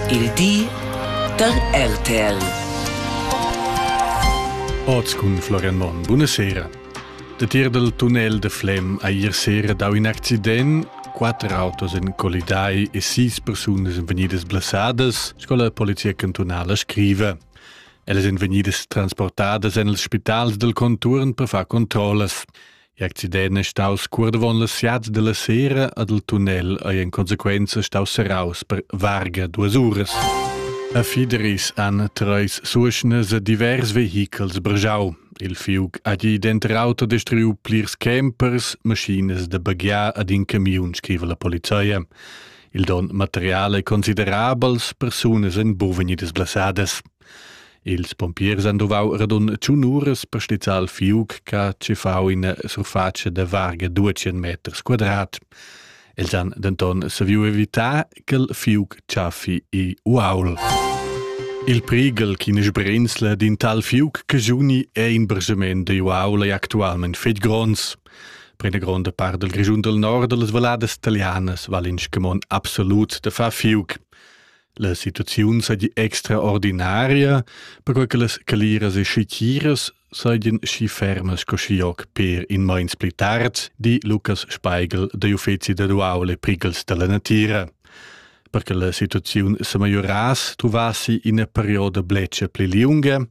Il di da RTL. Oz cun Florian Monn. Buonasera. Da tier dal tunnel de Flem ha ier sera dau in accident quatter autos en colidai e sis persunas en vegnidas blasadas, sco la polizia cantunala scrive. Ellas en vegnidas transportadas en els spitals del conturn per far controllas. L'accident è staus cuordavon las siats della sera ad il tunnel ei en consequenza staus serraus per varga duas uras. A Fideris han treis suschnas divers vehichels brgiau. Il fiug ha gi denter auto destruiu plirs campers, maschinas da baghiar ad in camiun, scriva la polizia. Il don material è considerabels, persunas en buven e disglasadas. Ils pompiers han duvau radun tschun uras per stizzar il fiug che ha tschiffau ina surfatscha da varga duecent meters quadrat. Els han denton saviu evitar ch'il fiug tschaffi i uaul. Il prighel ch'ina sbrinzla d'in tal fiug che giuni è in bragiment da uaul è actualment fetg gronds. Per una gronda part del Grischun del Nord, las valladas talianas valen scamon absolut de far fiug. La situaziun seigi extraordinaria, perquei che las caliras e schitiras seigien schi fermas co schi oc per in meins pli tard, di Lukas Speigel dagl uffeci dad uaul e prighels dalla natira. Per che la situaziun semajurass truvassi ina perioda bletscha pli liunga,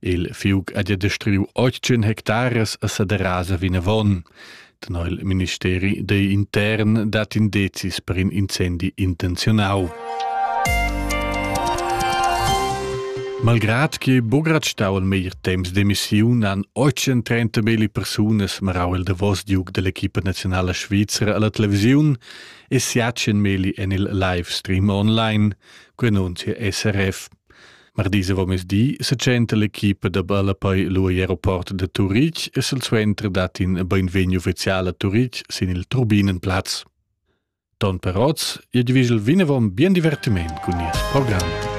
Il fiug ha gia destruiu otg hectares a Saderasa vinavon. Tenor il ministeri digl intern dat indezis per in incendi intenziunau. Malgrad che Bugrat stau al meglier temps demissiun han 830 beli persunas marau il davos diug dell'equipa nazionala svizra alla televisiun e siacen meli en il live stream online, quei annunzia SRF. Mardis avomesdi setschenta l'equipa da ballapei lu egl aeroport da Turitg e silsuenter dat in beinvegni ufficial a Turitg sin il Turbinenplatz. Ton per oz, il division vinavon bien divertiment cun nies program.